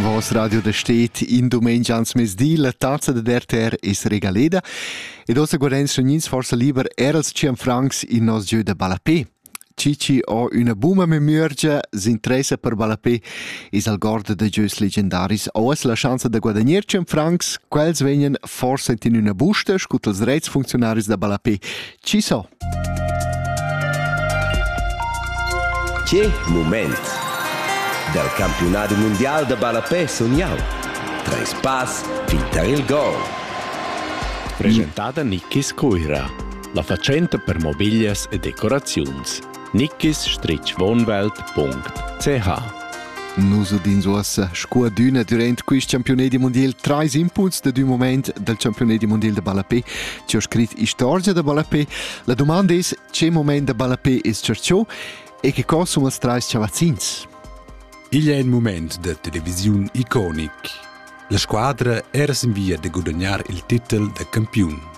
Vos radio da stet in domenica ans mezdi la tazza da RTR es regaleda ed ossa guardens sognins forsa liber erals ciam francs in nos gieu da ballapé. Cici ho üna buma memüergia, s'interessa per ballapé es al gorda da gieus legendaris. O es la schanza da guadagnar 100 francs, quels vegnan forsa in üna busta, scu tals reits funzionaris da ballapé Chi so? Che mument! Dal campiunadi mundial da ballapè sun jau. Treis pass fin tar il gol. Presentada Nikis Cuira, la fatschenta per mobiglias e decoraziuns. nickis-wohnwelt.ch Nus udins uossa scuadüna durant quist champiunedi mundial trais impuls da d'ün moment dal champiunedi mundial da ballapè chi ho scrit istorgia da ballapè. La dumanda es che moment da ballapè es tschercho e che co sun els trais chavazzins? Igl è il moment da televisiun iconic. La squadra era sin via da gudagnar il titel da campiun.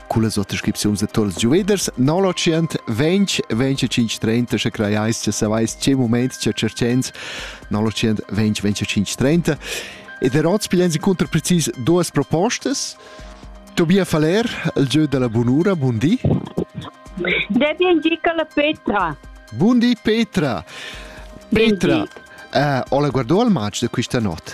cullas ottascripziuns da tols giuveders 920 2530 sche crajais che savais che moment che cercens 920 2530 ed er oz pigliens inconter precis duas propostas Tobia Faller, il gieu della bunura, buondì. Devi indica la Petra. Buondì Petra. Petra, uh, ho la guardo al match de questa notte.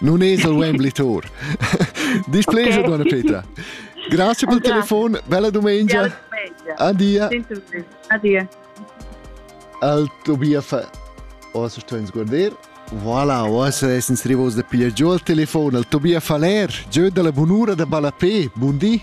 Non es il Wembley-Tour. Displegia, okay. donna Peter. Grazie per il telefono, bella domenica. Adia. Adia. Al Tobias Ossa sto in sguarder. Voilà, ossa essens rivos da pigliar giù al telefono al Tobias Faller, giù dalla bunura da Balapé. Buondì.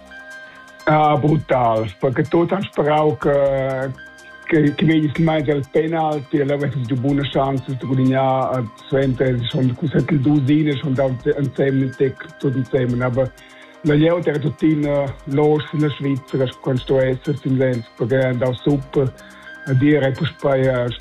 Ah, brutal, perché tot han sperau che che, che vegnis mai al penalti e l'avesses du buna chance de gudignar eh, suenter schon cusat il dusine schon da insieme tec tot insieme aber la jeu era tuttina los in la Svizzera quando sto esser in Lenz perché da super a dire puspei